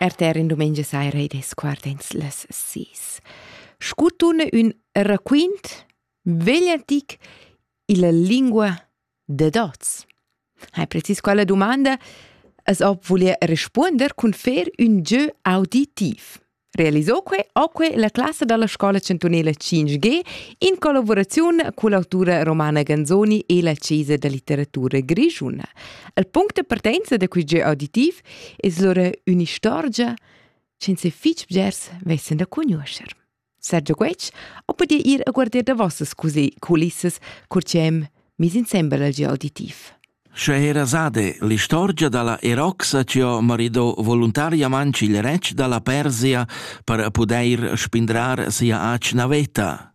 RTR in dumengia saira ed sguardens las sis. Scutun ün raquint vegliantic illa lingua de dots. Hai precis quella domanda, as ob voler respuonder cun fer ün jeu auditiv. Realisò que oque la classa dalla scola chantunela 5G in collaboraziun cull'autura Romana Ganzoni e la Chiesa da litteratura grischuna. Il punct de partenza da quel auditiv es lura un'istorgia che fich bgers vessen da conoscer. Sergio Guetg, o podia ir a guarder da vossas così culissas, cur ci hem mis insembel al auditiv. Sche era sade l'istorgia dalla eroxa chi ho maridò voluntariamang il retg da la Persia per pudair spindrar sia atgna veta.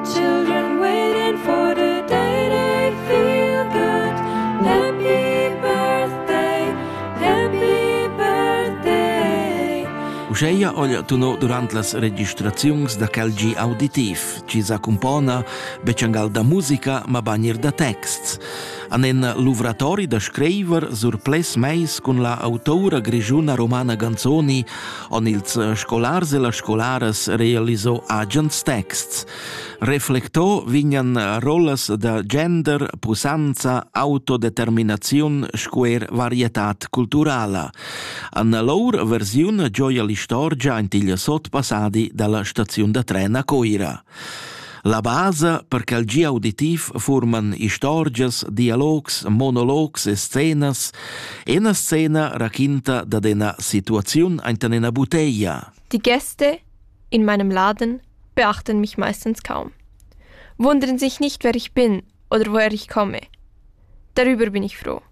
Children waiting for the day they feel good. Happy birthday, happy birthday. Uscheia ogl tunò durant las registraziuns da quel gi auditiv. chi s'accumpona bechangal da musica, ma banir da texts. An en luvratori da screiver sur ples meis cun la autora grigiuna romana Ganzoni on ils scolars e la scolaras realiso agens texts. Reflecto vignan rollas da gender, pusanza, autodeterminaziun, squer varietat culturala. Anna Lour versiun gioia l'istorgia aint il sotpassadi dalla staziun da tren a Coira. La basa per ch'el gia auditiv furman istorgias, dialogs, monologs e scenas, ena scena raquinta dad ena situaziun aintan ena buteia. Die Gäste in meinem Laden beachten mich meistens kaum. Wundern sich nicht, wer ich bin oder woher ich komme. Darüber bin ich froh.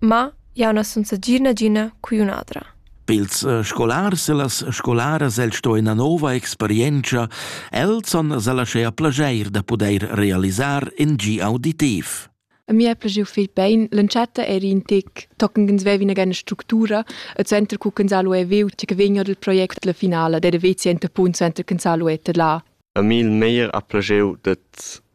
Ma jau na sun stà gia nagina cugliunadra. Pils eh, scolars e las scolaras el sto ina nova experientscha, els han laschea plageir da pudeir realisar in gi auditiv. A mi è plagiu fil bein, l'entschatta eri in tic tocken gens vevi una gana structura e center cu ch'ins ha lu viu tge che vegna dal project la finala, der vezi enta punto center ch'ins ha lu eta là. A mi il meglier ha plagiu det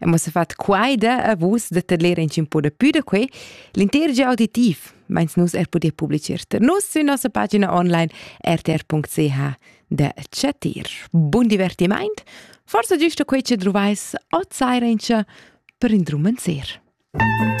E mo se fat quai da a vus da tedler in cin po da pü da quei, l'inter gia auditiv, meins nus er poder publicer ter nus sün nossa pagina online rtr.ch da chatir. Bun divertimaint, forsa giusto quei che druvais outside per indrumenzer. Musik